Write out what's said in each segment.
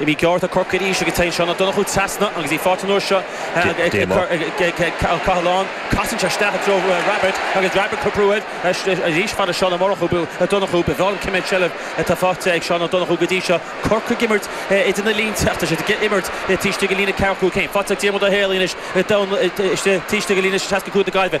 Imirt ghearr ag Corcaigh arís agus téann Seán Ó Donnchú trasna agus í faighte an uair seo ag Ó Cathaláin. Casann sé isteach i dtreo Rabbitte agus Rabbitte ag brú air arís fad le Seán Ó Murchú Ó Donnchú. Ba bhreá liom cé mhéad seilbh atá faighte ag Seán Ó Donnchú go dtí seo. Corcaigh ag imirt idir na línte ach tá siad ag imirt taobh istigh de líne 45. Faighte ag Diarmuid Ó hÉalaithe anois taobh istigh de líne 65 na Gaillimhe.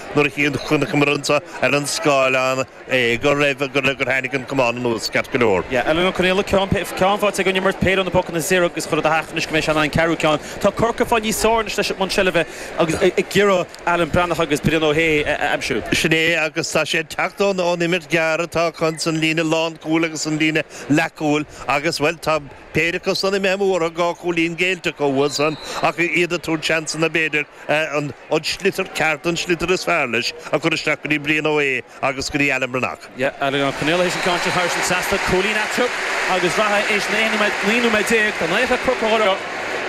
nuair a chonaiceamar anseo ar an scáileán é go raibh, gur tháinig an camán anuas ceart go leor. Yeah, Alan Ó Conaola, ceann, ceann faighte aige ón imirt péire ó na pocanna saor agus chuirfeá do theach anois go mbeidh sé in ann ceathrú ceann. Tá Corcaigh ag fáil níos fearr anois leis an mbunseilbh agus ag iarraidh Alan Breathnach agus Brian Ó hAodha a aimsiú. Sin é agus tá sé ag teacht ón imirt ghearr atá acu san líne lánchúil agus san líne leathchúil agus bhuel tá, Péire acusan a mbeadh múrtha dhá chúilín géillte acu uathusan ach iad ag tabhairt seansanna b'fhéidir an sliotar ceart, an sliotar is fearr leis, a chur isteach go dtí Brian Ó hAodha agus go dtí Alan Breathnach. Alan Ó Conaola théis an ceann seo thairis an seachtú cúilín a'teo agus bhraith théis na 11 nóiméad déag go n-athródh cúrsa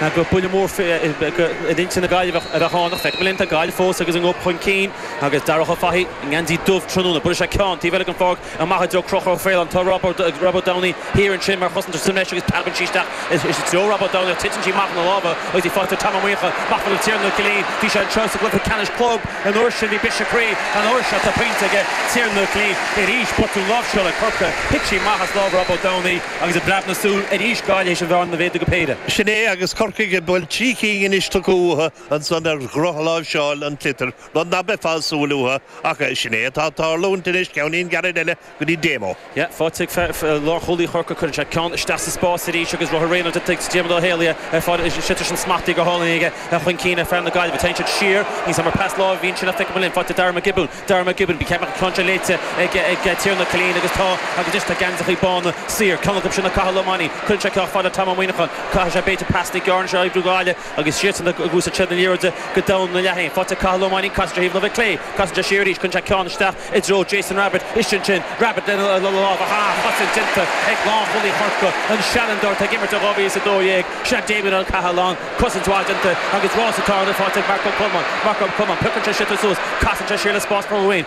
an chluiche, gur buille mór in intinn na nGaillimheach a bheadh ann ach feicfidh muid linn, tá Gaillimh fós agus a ngob chun cinn agus Darragh Ó Fathaigh i ngeansaí dubh tráthnóna. Buailfidh sé ceann taobh eile den pháirc amach i dtreo Conchúr Ó Faoláin tá Robert Downey thiar ansin mar chosantóir sa mbreis agus preabann sí isteach i dtreo Robert Downey ach titeann sí amach óna lámha agus í faighte ag Tom Ó Muineacháin amach fad le Tiarnán Ó Cillín bhí sé anseo sa gcluiche ceannais club an uair sin bhí briseadh croí an uair seo tá pointe ag Tiarnán Ó Cillín arís botún láimhseála ag Corcaigh thit sí amach as lámha Robert Downey agus i bpreab na súl arís Gaillimh théis an bhearna a mhéadú go péire. Sin é agus Corcaigh ag, bhuel, trí cinn anois tugtha uathu ansan ar dhrochláimhseáil an tsliotair Rud ná beifeá ag súil uathu, ach sin é atá ag tarlúint anois, ceann gairid eile go dtí Damo. Yeah, faighte ag lánchúlaí Chorcaí, cuireann sé ceann isteach sa spás arís agus rogha Reynolds ag Diarmaid Ó hÉalaithe ar fad, sliotar sin smachtaithe go hálainn aige chun cinn ar fhear na Gaillimhe. Téann sé siar, níl a fhios agam ar pas láimhe a bhí ann sin ach feicfimid linn. Faighte ag Darragh Mac Giobúin, Darragh Mac Giobúin, b'fhéidir an ceann seo léite ag Tiernan Killeen agus tá agus anois tá geansachaí bána saor, ceann acu sin le Cathal Ó Mainnín, cuireann sé ceann fad le Tom Ó Muineacháin, caithfidh sé b'fhéidir pas níos giorra anois á oibriú ag Gaillimh. agus iadsan ag úsáid na liathróide go domhain ina leath fhéin. Faighte ag Cathal Ó Mainnín, casann sé ar thaobh na láimhe clé, casann sé siar arís, cuireann sé ceann isteach i dtreo Jason Rabbitte, istigh ansin, Rabbitte lena lámh, ach sárchosaint déanta ag lánchúlaí Chorcaí an seanfhondúir atá ag imirt ó 2012, sea, Damien Ó Cathaláin, cosaint mhaith déanta agus rás atá ann, faighte ag Mark Ó Colmáin, Mark Ó Colmáin, piocann sé sliotar suas, casann sé siar le spás a fháil dhó fhéin,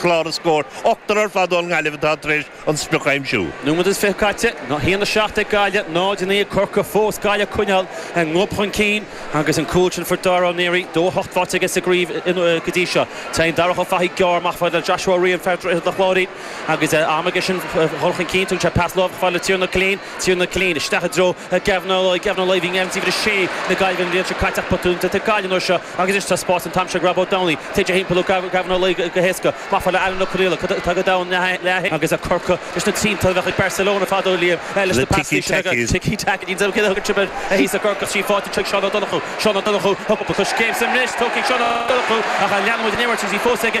clár na scór ochtar ar fad ón nGaillimh atá tar éis an sprioc a aimsiú. Nóiméad is fiche caite, 1, 7 ag Gaillimh, 0, 9 ag Corcaigh fós, Gaillimh ag coinneáil a ngob chun cinn agus an cúl sin fuair Dara Ó Néaraí, 2 8, faighte aige sa gcraobh go dtí seo. Téann Darach Ó Fathaigh gearr amach fad le Joshua Ó Riain, fear Dhroichead an Chláirín agus am aige sin dhul chun cinn, tugann sé pas láimhe fad le Tiernan Killeen, Tiernan Killeen isteach i dtreo Gavin Ó Laoi, Gavin Ó Laoi a bhí ina uimhir 6 na Gaillimhe an bhliain seo caite ach botún déanta ag Gaillimh an uair seo. Agus anois tá spás an t-am seo ag Rob Ó Domhnaill téann timpeall ó Gavin Ó Laoi go héasca. Maith an fear le Alan Ó Conaola atá go domhain agus ag Corcaigh leis na triantáin a bheadh ag Barcelona fadó, Liam, leis na pasanna sin acu, ticky-tack, n'fheadar céard a thugann sibh air, ag Corcaigh tríd an bpáirc anois chuig Seán Ó Donnchú. Seán Ó Donnchú, Tá cúpla coiscéim sa mbreis tugtha ag Seán Ó Donnchú ach leanfaidh an imirt agus í fós ag.